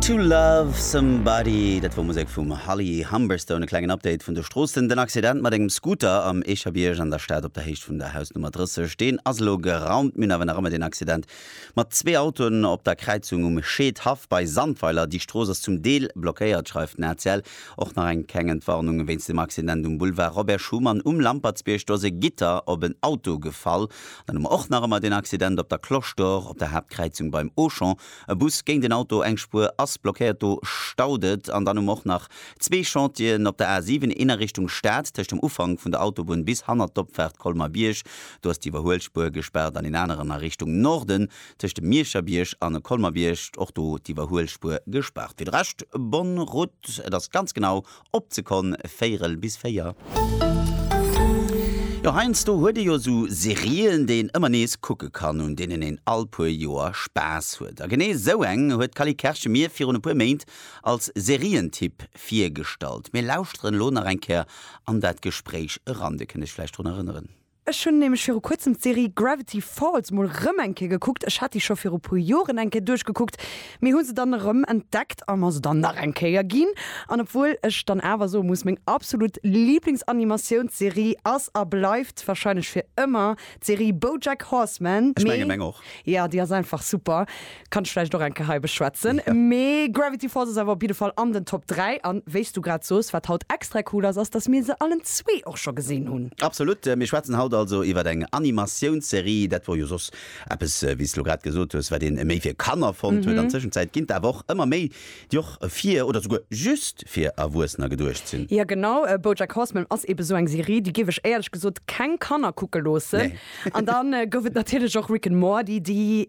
To Love Somebody, dat wor Musek vum Holly Humberstone. E klengen Update vun de Stroossen, Den Accident mat engem Scooter am Eecherbierg an der Stad op der Héicht vun der Hausnummer 30, deen ass elo geraumt. Mir hunn awer nach ëmmer deen Accident mat zwee Autoen op der Kräizung um Scheedhaff bei Sandweiler. Déi Strooss ass zum Deel blockéiert, schreift den ACL. Och nach eng keng Entwarnung wéinst dem Accident um Boulevard Robert Schuman um Lampertsbierg, Do ass e Gitter op en Auto gefall Dann hu mer och nach ëmmer deen Accident op der Cloche d'Or, op der Haaptkräizung beim Auchan, e Bus géint en Auto, eng Spuer ass blockéiert, do staut et. An dann hu mer och nach zwee Chantieren op der A 7, een a Richtung Stad tëscht dem Ufank vun der Autobunn bis hannert d'Opfaart Colmer-Bierg, do ass d'Iwwerhuelspuer gespaart, an een aneren a Richtung Norden tëscht dem Miescherbierg an Colmer-Bierg, och do d'Iwwerhuelspuer gespaart. Fir de Rescht, bonne route, et ass ganz genau Opzekonn véirel bis véier. Jo, heiansdo huet ee jo esou Serien, déi een ëmmer nees kucke kann, un deenen een all puer Joer Spaass huet. A genee esou eng huet d'Cally Kerschen mir virun e puer Méint als Serientipp virgestallt. Mir lauschteren elo nach eng Kéier an dat Gespréich eran. Dir kënnt Iech vläicht drun erënneren. Ech hunn nämlech viru kuerzem d'Serie Gravity Falls mol rëm eng Kéier gekuckt. Ech hat déi scho viru puer Joren eng Kéier duerchgekuckt, mee hu se dann erëm entdeckt a mer se dann nach eng Kéier ginn. An obwuel ech dann awer soe muss, meng absolut Liiblingsanimatiounsserie ass a bleift warscheinlech fir ëmmer d'Serie BoJack Horseman, mee jo, déi ass einfach super, Kann ech vläicht och eng Kéier hei beschwätzen. Mee Gravity Falls ass awer op jidde Fall an den Top 3. An wéi s du grad soos, wat haut extra cool ass, ass, dass mir se allen zwee och scho gesinn hunn. Absolut. Mir schwätzen haut also iwwer eng Animatiounsserie. Dat wor jo soss eppes, wéi s de lo grad gesot hues, wat ee méi fir Kanner fonnt huet. An Tëschenzäit ginn d'Awer och ëmmer méi Déi och fir oder souguer just fir Erwuessener geduecht sinn. Jo genau, Bojack Horseman ass eben esou eng Serie, déi géif ech éierlech gesot keng Kanner kucke loossen. An da gouf et natierlech och Rick and Morty, déi,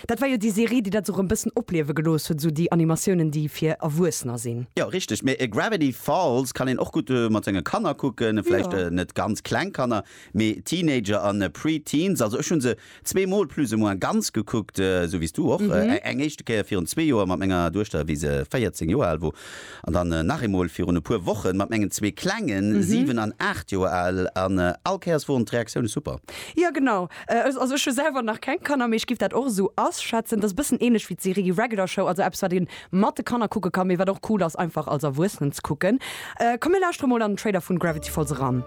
dat war jo déi Serie, déi dat esou erëm e bëssen opliewe gelooss huet, esou déi Animatiounen, déi fir Erwuessener sinn. Jo richteg, mee Gravity Falls kann een och gutt mat senge Kanner kucken, vläicht net ganz kleng Kanner, mee Teenager an Pre-Teens. Also ech hu se Zwee Mol plus ou moins ganz gekuckt, esou wéi s du och. Eng éischte Kéier virun zwee Joer mat menger Duechter, wéi se 14 Joer al wor, an dann nach eemol virun e puer Wochen mat mengen zwee Klengen, 7 an 8 Joer al, an all Kéiers woren d'Reaktioune super. Jo genau, also ech hu selwer nach keng Kanner, mee ech giff dat och esou asschätzen. Et ass e bëssen ähnlech wéi d'Serie Regular Show, also eppes wat een mat de Kanner kucke kann, mee wat och cool ass einfach als Erwuessenen ze kucken. Komm mir lauschteren mol an den Trailer vun Gravity Falls eran.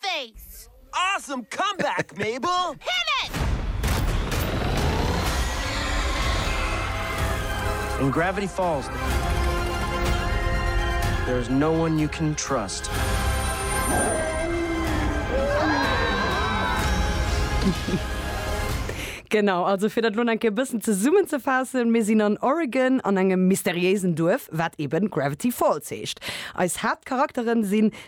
Face. Awesome comeback, Mabel! Hit it! In Gravity Falls, there is no one you can trust. Genau, also fir dat elo nach eng Kéier e bëssen zesummenzefaassen, Mir sinn an Oregon an engem mysteriéisen Duerf, wat eben Gravity Falls heescht. Eis Haaptcharakteren sinn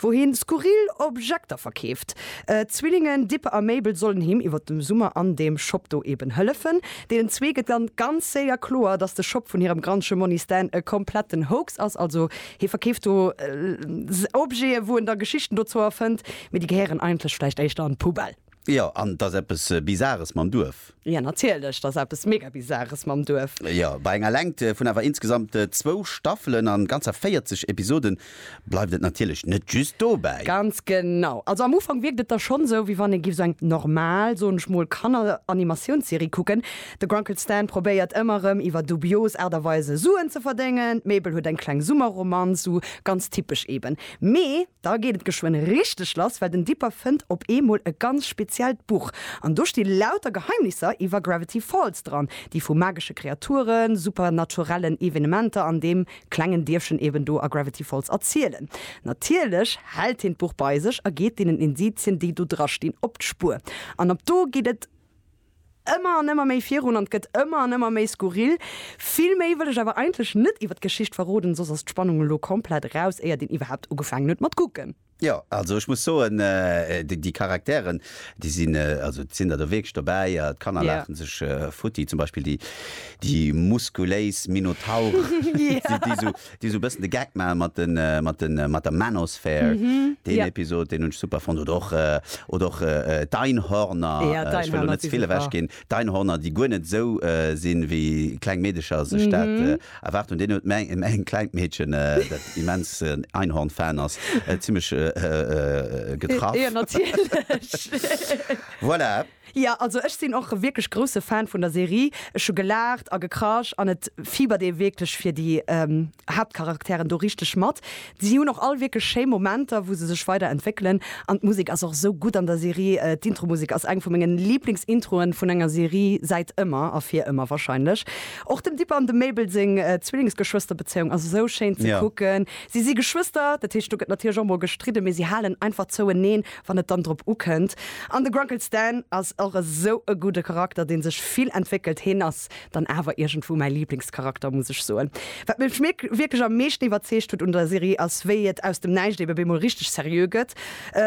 wou hien skurril Objekter verkeeft. D'Zwillingen Dippe a Mabel sollen him iwwer dem Summer an deem Shop do eben hëllefen. Deenen zwee gëtt dann ganz séier kloer, dass de Shop vun hirem Grandche Monni Stan e kompletten Hoax ass. Also hie verkeeft do Objete wou en da Geschichten dozou erfënnt, mee déi gehéieren eigentlech vläicht éischter an d'Poubelle. Jo, an 't ass eppes Bizares mam Duerf. Jo, natierlech, 't ass eppes mega Bizares mam Duerf. Jo, bei enger Längt vun awer insgesamt zwou Staffelen an ganzer 40 Episoden bleift et natierlech net just dobäi. Ganz genau. Also am Ufank wierkt et da schonn sou, wéi wann ee giff sou eng normal, soen ech mol, Kanner-Animatiounsserie kucken. De Grunkle Stan probéiert ëmmer erëm iwwer dubios Aart a Weise Suen ze verdéngen, d'Mabel huet eng kleng Summerromanz, sou ganz typesch eben. Mee. Da geet et geschwënn richteg lass, well den Dipper fënnt op eemol e ganz speziellt Buch. An do sti lauter Geheimnisser iwwer Gravity Falls dran, déi vu magesche Kreaturen, supernaturellen Evenementer an deem klengen Dierfchen eben do a Gravity Falls erzielen. Natierlech hält hien d'Buch bei sech a geet deenen Indizien, déi do drastinn, op d'Spuer. An ab do geet et. ëmmer an ëmmer méi virun an gëtt ëmmer an ëmmer méi skurril. Vill méi wëll ech awer eigentlech net iwwert d'Geschicht verroden, soss ass d'Spannung elo komplett eraus, éiert een iwwerhaapt ugefaangen huet mat kucken. Jo, also ech muss soen, déi Charakteren, déi sinn, also et sinn der do wierklech dobäi, a d'Kanner laache sech futti, zum Beispill déi muskuléis Minotaure, déi esou. déi esou e bëssen de Gag maache mat de, mat de, mat der Manosphere. Deen Episod, deen hunn ech super fonnt. Oder och, oder och d'Einhorner, ech wëll elo net ze vill ewech ginn, d'Einhorner, déi guer net esou sinn, wéi kleng Meedecher sech dat erwaart hunn. Deen huet meng, meng klengt Meedchen, dat immens en Einhorn-Fan ass, zimlech getraff. Voilà. Ja, also ech sinn och wierklech grousse Fan vun der Serie. Ech hu gelaacht a gekrasch an et fiebert ee wierklech fir déi Haaptcharakteren do richteg mat. Si hunn och all wierklech schéi Momenter, wou se sech weider entwéckelen an d'Musek ass och esou gutt an der Serie. D'Intromusek ass eng vu mengen Liiblingsintroen vun enger Serie säit ëmmer a fir ëmmer warscheinlech. Och dem Dipper an dem Mabel seng Zwillingsgeschwësterbezéiung ass esou schéin ze kucken. Si si Geschwëster, dat heescht do gëtt natierlech och mol gestridden, mee si halen einfach zoueneen. wann et dann drop ukënnt. An de Grunkle Stan ass och esou e gudde Charakter, dee sech vill entwéckelt. Heen ass dann awer iergendwou mäi Liblingscharakter, muss ech soen. Wat mech wierklech am meeschten iwwerzeegt huet un der Serie ass, wéi et aus dem Näischt ebe bemol richteg seriö gëtt.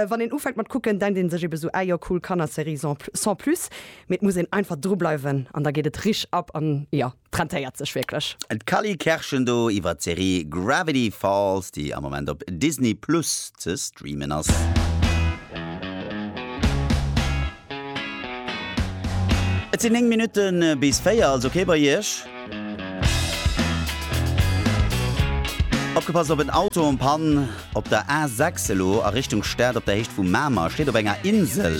Wann een ufänkt mat kucken, denkt ee sech ebe sou, ah jo, cool Kannerserie sans plus, mee et muss een einfach drubleiwen an da geet et rich ab. An jo. D'rentéiert sech wierklech. D'Cally Kerschen do iwwert d'Serie Gravity Falls, déi am Moment op Disney Plus ze streamen ass. Et sinn 9 Minutten bis 4, also okay bei iech. Opgepasst op en Auto en panne op der A6 elo a Richtung Stad op der Héicht vu Mamer, steet op enger Insel.